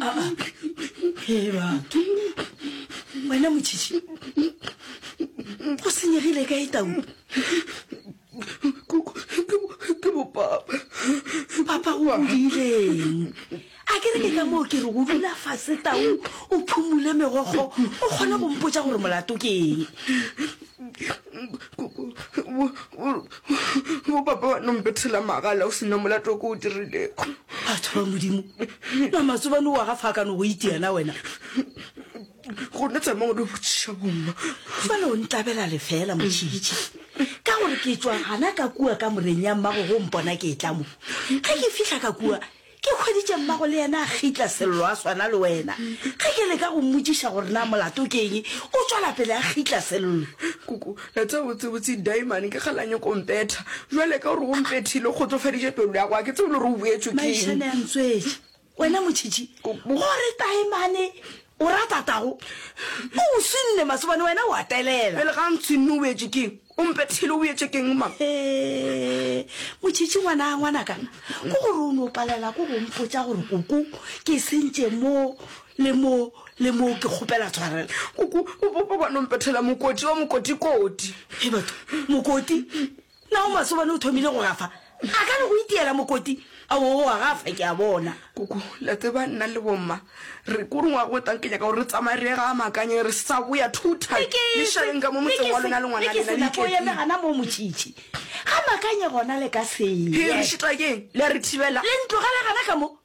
Aa, hee batho. Wena motšhitšhi. Go senyegile kae tau? Kuku, ke bo ke bo papa. Papa o bodileng? A ke re ke ka moo ke re o dula fase tau o phumule megokgo o kgone go mpotša gore molato ke eng. Bopapa wa nompethela magala o sena molato ko o dirilego. Batho ba Modimo, na matsobane wa ga fa ka no go itia na wena? Gona tsamang o lo botšiša bomma. Fale o ntlabela lefela motšhitšhi ka gore ke tšwa gana ka kua ka moreng ya mmago go mpona ke tla mo. Ge ke fihla ka kua Ke hweditše mmago le yena a gitla Sello a swana le wena. Ge ke leka go mmotšiša gore na molato ke eng, o tšwela pele a gitla Sello. Koko, la tseba botsebotse Daimane ke ge la nyoko mpetha. Bjale ka gore o mpethile, o kgotsofaditše pelo ya go, ga ke tsebe le gore o boetswe ke eng. Maišane a ntswetše. Wena motšhitšhi, gore Daimane o rata tago, o o swinne masobane, wena o a telela. Pele ga a ntshwinne o boetswe ke eng? O mpethile o etse keng mang? He, motšhitšhi ngwana ngwanaka, ko gore o no palela ko go mpotša gore koko ke sentše mo le mo le mo ke kgopela tshwarelo. Koko o bo bo bano mpethela mokoti wa mokoti koti. He batho, mokoti? Na o masobane o thomile go gafa? A ka re go itiela mokoti a o wa gafa ke a bona. Koko, le a tseba nna le bomma re ko rongwa go tang ke nyaka gore re tsamaye re ga amakanye re sa go ya two time. Le šaleng ka mo motseng wa lona le ngwana lena le ke yeme gana mo motšitši. Ga makanye gona le ka se. He re šita ke le re thibela. Le ntlogele gana ka mo.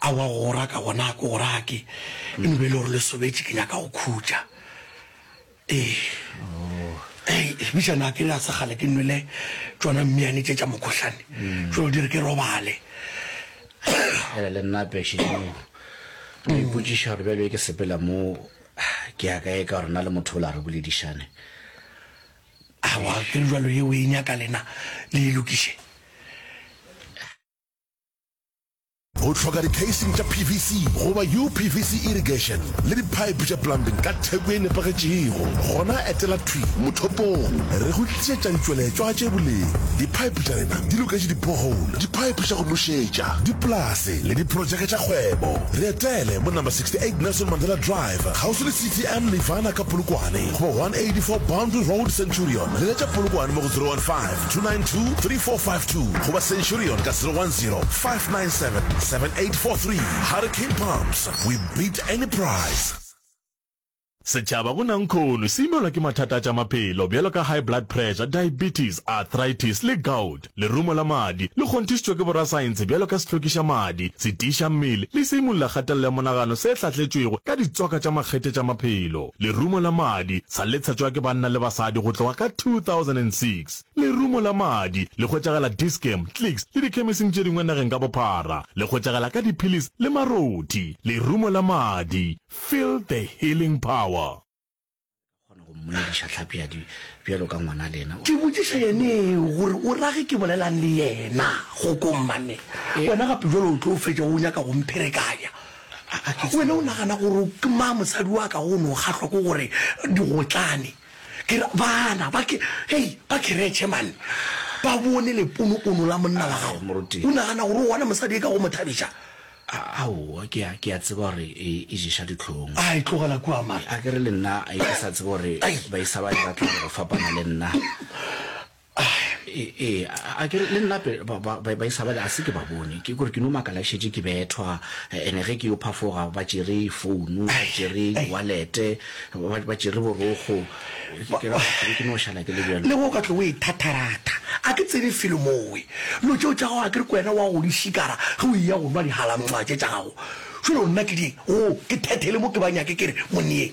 Aowa go go raka gona ga ke go rake, e no be e le gore le sobetše ke nyaka go khutša. Ee. Hei, bitša na ke re a se kgale ke nwele tšona mmiane tše tša mokhohlane, tšo di re ke robale. Ee, le nna pešeneng. Ke ipotšiša gore bjalo e ke sepela mo ke ya kae ka gore nna le motho o la re boledišane. Aowa ke re bjalo ye o e nyaka lena le e lokiše. O hloka di-casing tša PVC goba UPVC irrigation le diphaephe tša plumbing ka theko e nepagetšego? Gona etela thwi mothopong re go tlišetša ditšweletšwa tše boleng. Diphaephe tša rena di loketše di-borehole, diphaephe tša go nošetša, dipolase le diprotšeke tša kgwebo. Re etele mo Number 68 Nelson Mandela Drive, kgauswi le CTM Nirvana ka Polokwane, goba 184 Boundary Road, Centurion. Leletša Polokwane mo go 015 292 3452 goba centurion ka 010 597 7843 hurricane pumps we beat any price Setšhaba go Nankhono se imelwa ke mathata a tša maphelo bjalo ka high blood pressure, diabetes, arthritis le gout. Lerumo la madi le kgonthišitšwe ke borasaentshe bjalo ka sehlokiša madi, setiiša mmele le seimololakgatelelo ya monagano se hlatletšwego ka ditswaka tša makgethe tša maphelo. Lerumo la madi sa letshetšwa ke banna le basadi go tloga ka 2006. Lerumo la madi le hwetšagala Dis-Chem, Clicks le dikhemising tše dingwe nageng ka bophara. Le hwetšagala ka diphilisi le marothi. Lerumo la madi, feel the healing power. Ka kgona go mmolediša hlapi ya di bjalo ka ngwana lena. Ke botšiša yeneo gore o rage ke bolelang le yena go kommanne. Wena gape bjalo o tlo fetša o nyaka go mpherekanya. Wena o nagana gore ke ma mosadi wa ka go no kgahlwa ke gore digotlane ke re bana ba ke hey ba keretšhe man ba bone leponopono la monna wa gago Moruti. o nagana gore o gona mosadi e ka go mo thabiša A- aowa ke a ke a tseba gore e e ješa ditlhong a e tlogela kua mara a ke re le nna a ke sa tseba gore Ai. ba isa ba e batla go fapana le nna ee a ke le nnape baisabale a se ke ba bone ke kore ke no makala ke šetše ke bethwa ene ge ke yo phafoga ba tšere founu ba tšere walete ba tšere borokgo ke no šala ke le bjalo le go ka tlo o e thatharatha a ke tsebe felo mowe lo tšeo tša gago a ke re ko wena wa go di šikara ge o eya go nwa dihalamtšwa tše tša gago šole o nna ke di go ke thethele mo ke ba nyake ke re monneyeng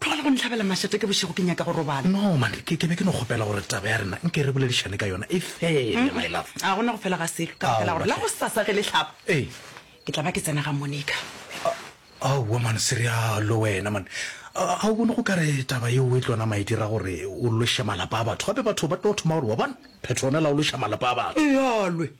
Tlogela go nhlabela mašate ke bošego, ke nyaka go robala. No, mane, ke, ke be ke no kgopela gore taba ya rena nke re boledišane ka yona e fele, my love. Ga go na go fela ga selo, ka baka la gore la gosasa ge le hlaba, Ee. ke tla ba ke tsena ga Monica. Aowa, mane, se realo wena, mane. Ga o bone go ka re taba yeo e tlo nama e dira gore o loše malapa a batho? Gape batho ba tlo thoma gore, Wa bona, Petronella o loša malapa a batho. Ealwe,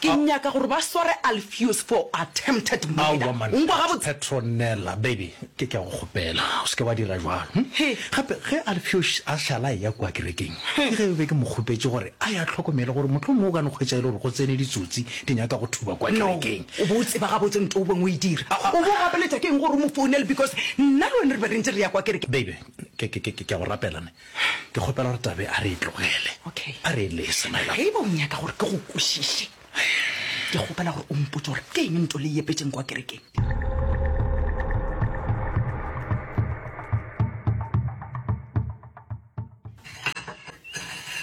Ke nyaka gore ba sware Alpheus for attempted murder. Aowa man, Petronella baby, ke ke a go kgopela o se ke wa dira bjalo. Hm? Gape ge Alpheus a šala a eya kua kerekeng, ke ge be ke mo kgopetše gore a ye a hlokomele gore mohlomongwe o ka no hwetša e le gore go tsene ditsotsi di nyaka go thuba kua kerekeng. No, o bo o tseba gabotse nto o beng o e dira. O bo o gapeletša ke eng gore o mo founele because nna le wena re be re ntše re ya kua kerekeng? Baby, ke ke ke ke a go rapela ne. Ke kgopela gore Tabe a re e tlogele. Okay. A re e lese, my love. Ge e ba o nyaka gore ke go kwešiše, ke kgopela gore o mpotse gore ke eng nto le e epetšeng kwa kerekeng.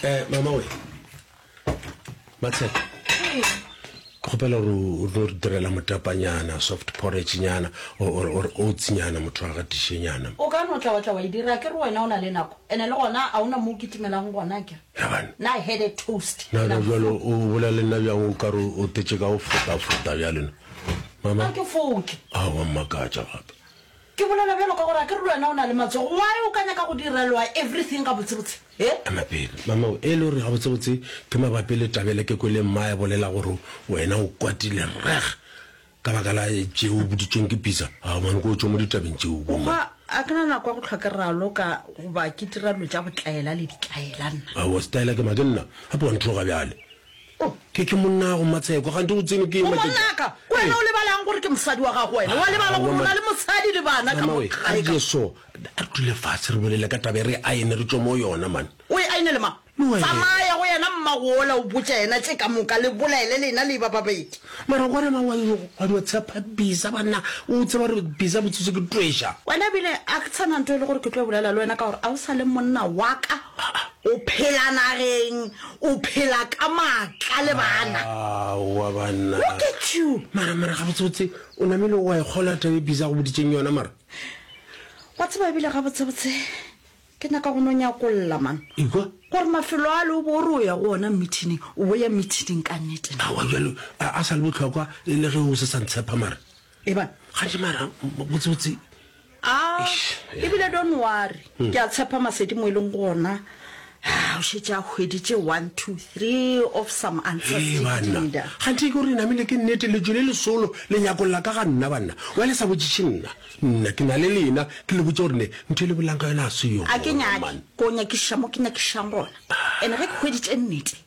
Eh, mama we. matshepa kgopela gore o tlo re direla motapanyana soft porridge nyana or or oats nyana motho wa gatiše nyana o ka no tla wa tla wa e dira ke re wena o na le nako ene le gona a ona mo o kitimelang gona ke Yabana. na I had a toast na na jalo o bolela le nna bjang o ka re o tetse ka go fota fota bjalo na mama a ke foke a wa mmakatša gape Ke bolela bjalo ka gore a ke re le wena o na le matsogo, why o ka nyaka go direlwa everything gabotsebotse? He? Ema pele, mamao, e le gore gabotsebotse ke mabapi le taba yela ke kwele mmae a bolela gore wena o kwatile reg ka baka la tše o boditšweng ke Pitsa. Ao man, ko o tšwe mo ditabeng tšeo, bo mma. Ga ke na nako ya go hlwa ke raloka goba ke dira dilo tša botlaela le ditlaela nna. Aowa, setlaela ke ma? Ke nna? Gape wa nthoga bjale? Oh, ke, ke monnago Matsheko, kgante o tsene ke matšatši. Ngwanaka, ke wena o lebalang gore ke mosadi wa gago wena? Wa lebala gore o na le mosadi le bana ka mo gae ka? Jesu, a re dule fatshe re bolele ka taba e re aene re tšwe mo yona man. O e aine le mang? Tsamaya go yena mmago ola o botša yena tše ka moka le bolele lena le eba babedi. Mara gore ma wa yo wa no tshepa bisa banna o tseba gore bisa botsitso ke twesha. Wena bile a ke tsana nto e le gore ke tlo bolela le wena ka gore a o sa le monna wa ka o phela nageng O phela ka maatla le bana. Aowa banna. Look at you! Mara, mara, gabotse botse, o namile wa e kgolwa taba e Busy a go boditšeng yona mara? Wa tseba ebile gabotse botse ke nyaka go no nyakolla man. Ekwa? Gore mafelo ale o bo o re o ya go ona meeting, o bo ya meeting ka nnete na? Aowa bjalo a, a sa le bohlokwa e le ge o se sa ntshepa mara. eba gantši mara botsebotse a ebile don worry hmm. ke a tshepa masedi mo e leng gona o šetse a hweditše one two three of some answersbanna gantši ke gore namele ke nnete lejo le lesolo le nyakong la ka ga nna banna wa le sa botšiše nna nna ke na le lena ke le botse gore ne ntho e le bolang ka yona a se yone a ke nyake ko nyakiša mo ke nyakišang gona and-e ge ke hweditše nnete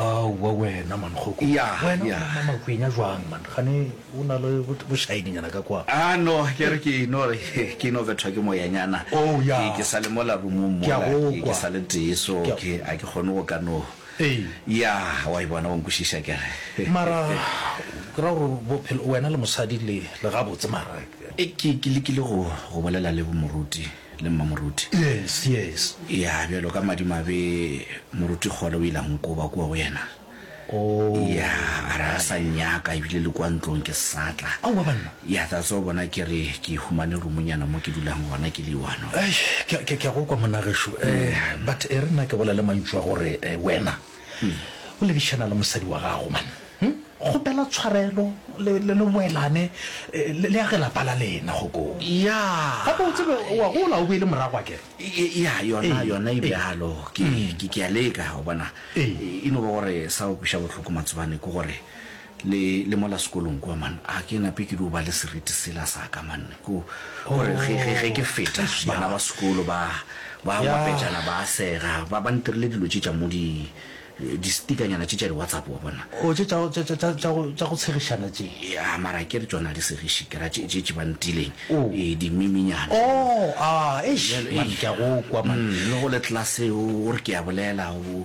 Aowa wena man kgoko. Yah Wena o yah. na makwenya jwang man gane o na le bošaedinyana ka kwa. Ah no ke re ke no re ke ino bethwa ke moyanyana Oh yah. ke ke sa le mola roomong Ke a mola go ke kwa. ke sa le tee so Ke a- ke a ke kgone go ka no Ee. yah wa e bona wa nkwešiša ke re Mara ke ra gore bophelo wena le mosadi le le gabotse mara. Ke ke lekile go go bolela le bo moruti le Mmamoruti? Yes, yes. Ya, bjalo ka madimabe, Moruti Kgole o ile a nkoba kua go yena. Oh. Ya, a re a sa nnyaka, ebile le kua ntlong ke sa tla. Aowa banna! Ya, that's why o bona ke re ke humane roomonyana mo ke dulang gona, ke le one. Eish, ke a, ke a, ke a go kwa monna gešo. Eh, but e re nna ke bolele mantšu a gore, eh, wena. O lebišana le mosadi wa gago man hm kgopela tshwarelo le le le boelane le le age lapa la lena gokong. Yeah. Gape o tsebe o a gola o boele morago a kere. Yeah yona yona e bjalo ke ke ke a leka o bona. E no ba gore sa go kweša bohloko Matsobane ke gore Le, le mola sekolong kua, man, a ke nape ke dio ba le seriti sela sa ka, man, ko, gore ge, ge, ge ke feta, Oh, Tricia. bana ba sekolo ba, ba Ya. ngwapetšana, ba a sega, ba, ba ntirile dilo tše tša mo di, di-stickernyana tše tša di-WhatsApp, wa bona. Oh, tše tša, tša, tša, tša, tša go, tša go tshegišana tše. Ya, mara ke re tšona a di segiše, ke ra tše, tše, tše ba ntileng, Oh. ee, di-meme-nyana. Oh, a, eish, Bjale, man, eish. ke a go kwa, man. Mm, le go le class-e, o, o re ke a bolela, o,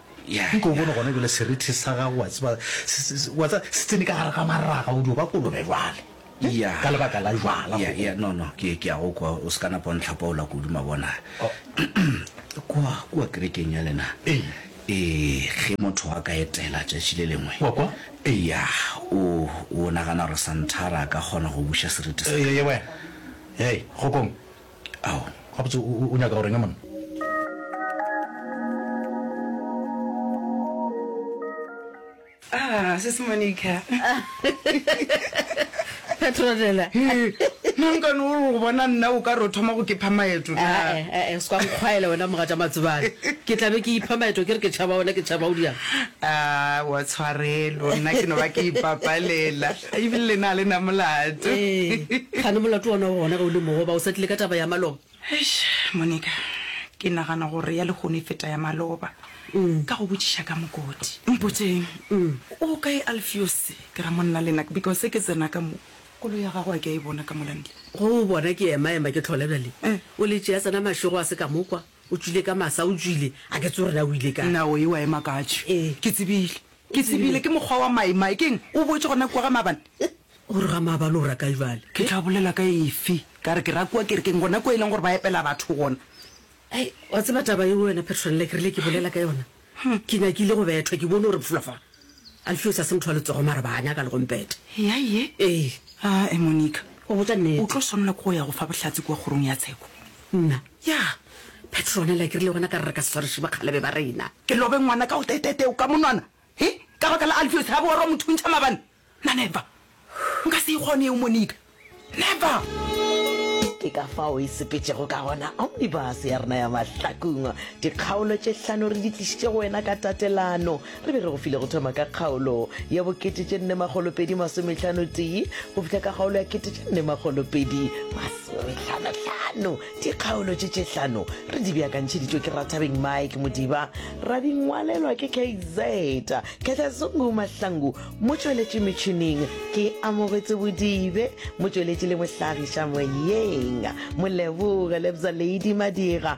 Nko o bone gona bjale serithi sa gago, wa tseba, se, se, se, wa tseba, se tsene ka gare ga maraga, o dio ba kolobe bjale, ne? Ya. Ka lebaka la jwala, Ya, go. ya, no, no, ke, ke a go kwa, o se ka napa o ntlhapaola kudu, mabona. Oh. Kwa, kwa kerekeng ya lena, Ee. ee, ge motho a ka etela tšatši le lengwe, Wa kwa? eya, o, o nagana gore Santara a ka kgona go buša serithi sa ka? Ee, wena. Hei, kgokong. Ao, gabotse o, o, o nyaka go reng monna? Ah, Sis Monica. Petronella. Hee, nankane o re go bona nna o ka re o thoma go ke pha maeto na? Ah, eh, eh, eh, se kwa nkgwaela wena moga tša matsebane. Ke tla be ke ipha maeto ke re ke tšhaba wena ke tšhaba o diang. Ah, wa tshwarelo, nna ke no ba ke ipapalela. Ebile le na le na molato. Ee, gane molato wona o gona ge o le mogoba, o sa tlile ka taba ya maloba. Eish, Monica, ke nagana gore ya lehono e feta ya maloba. Ka go botšiša ka mokoti. Mpotseng, o kae Alfios, ke ra monna le nna, because ke tsena ka mo, koloi ya gagwe a ke a e bona ka mola ntle. Go o bona ke ema ema ke tlhola bjale. O le tšea tsena mašego a se ka mo kwa, o tšwile ka masa, o tšwile, a ke tse o rena o ile kae. Nna o ewa ema ka tšhwe. Ee. Ke tsebile. Ke tsebile ke mokgwa wa Maimai. Ke eng? O boetše gona kua ga maabane? O re ga maabane o ra kae bjale? Ke tla bolela ka efe? Ka re ke ra kua kerekeng, gona kua e leng gore ba epela batho gona. Hei, wa tseba taba yeo wena Petronella, ke rile ke bolela ka yona. Ke nyakile go bethwa, ke bone gore bfula fa. Alfios a se motho wa letsogo mara ba nyaka le go mpeta. Eya ye? Ee. Aa, Monica. Go botša nnete. O tlo swanela ke go ya go fa bohlatse kua kgorong ya tsheko. Nna, Ya, Petronella, ke rile gona ka re re ka se sware šibakgalebe ba rena. Ke lobe ngwana ka go tetete o ka monwana, he, ka baka la Alpheus ga borwa mo thuntšha mabane? Na never! Nka se e kgone eo, Monica. Never! Ke ka fao e sepetšego ka gona omnibus ya rena ya mahlakung. Dikgaolo tše hlano re di tlišitše go wena ka tatelano. Re be re go file go thoma ka kgaolo ya bokete tše nne makgolo pedi masometlhano tee go fihla ka kgaolo ya kete tše nne makgolo pedi masometlhanotlhano. Dikgaolo tše tše hlano re di beakantšheditšwe ke Rathabeng Mike Modiba, ra di ngwalelwa ke KZ Khehlezungu Mahlangu, motšweletši metšhineng ke Amogetse Bodibe, motšweletši le mohlagiša moyeng Moleboge Lebza Lady Madira,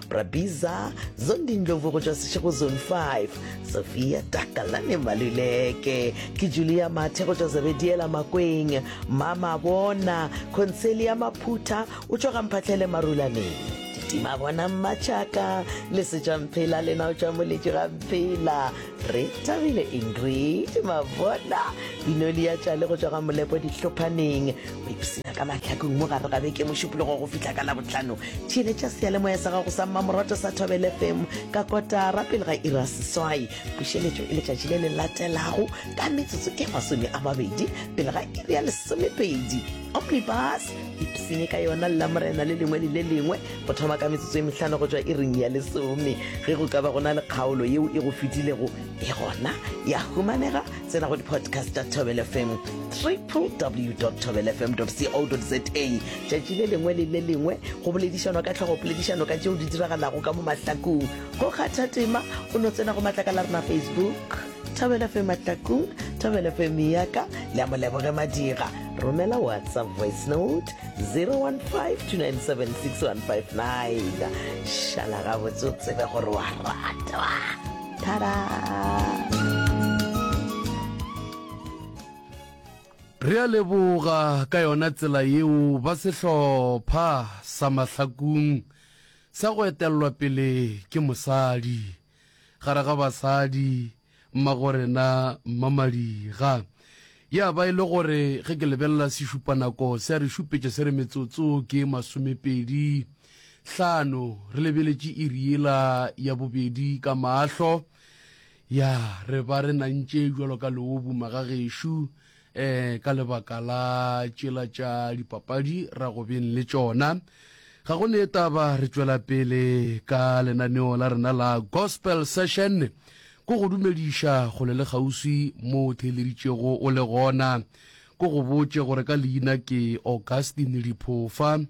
Brabiza Zondindlovu go tšwa Seshego Zone 5, Sophia Takalane Maluleke, ke Julia Mathe go tšwa Zebediela Makweng, Mama Bona, Concelia Maphutha o tšwa Gamphatlhele Marulaneng. Ditima bona mmatšhaka le setšamphela lena o tšwa moletši ga mphela re thabile ingrid mabona binoli ya tšale go tšwa ga molepo dihlophaneng go ipsina ka mahlakong mo gare ga beke mošupologo go fihla ka labotlhano theeletša seyalemoya sa gago sa mmamorato sa thobel fm ka kotara pele ga ira seswai pušeletšo e letšatši le le latelago ka metsotso e masome a mabedi pele ga iri ya lesomepedi omnibus ipsine ka yona lela morena le lengwe le le lengwe go thoma ka metsotso e mehlano go tšwa iring ya lesome ge go ka ba go na le kgaolo yeo e go fetilego e gona ya humanega tsena go di-podcast tša tobel fm www tobel fm co za tšatši le lengwe le le lengwe go boledišanwa ka tlhogo poledišano ka tšeo di diragalago ka mo mahlakong go kgatha tema o no tsena go matlaka la rena facebook tobel fm mahlakong tobel fm yaka le a moleboge madira romela whatsapp voice note 015 2976159 šala gabotse o tsebe gore wa ratwa Re a leboga ka yona tsela yeo ba sehlopha sa Mahlakung sa go etelelwa pele ke mosadi gare ga basadi Mmagorena Mmamadiga. Ya ba e le gore ge ke lebelela sešupanako se a re šupetša se re metsotso ke masomepedi Hlano, re lebeletše iri yela ya bobedi ka mahlo. Ya, re ba re nantše jalo ka leobu magagešo, eh, ka lebaka la tšela tša dipapadi ra go beng le tšona. Ga go ne taba, re tšwela pele ka lenaneo la rena la Gospel Session. Ko go dumediša kgole le kgauswi mo o theeleditšego o le gona. Ko go botše gore ka leina ke Augustine Diphofa.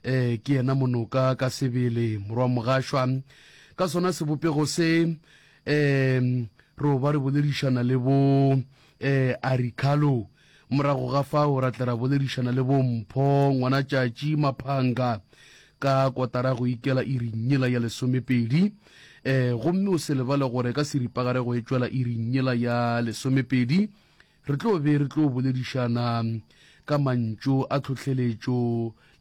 eh ke yena monoka ka sebele morwa mogašwa ka sona sebopego se um ro ba re boledišana le bo um eh, aricalo morago ga fao ra tle ra boledišana le bo mpho ngwana tšatši maphanga ka kotara go ikela irinyela ya lesomepedi um gomme o se lebale gore ka seripagare go e tšwela irinyela ya lesomepedi Re tlo be re tlo boledišana ka mantšu a tlhohleletšo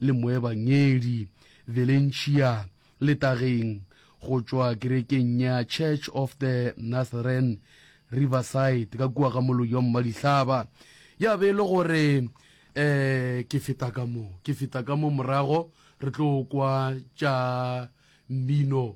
le moebangedi Valencia le Tageng go tšwa kerekeng ya Church of the Nazarene Riverside ka kua ga Moloyong Madihlaba. Ya be e le gore um ke feta ka mo, ke feta ka mo morago re tlo kwa tša mmino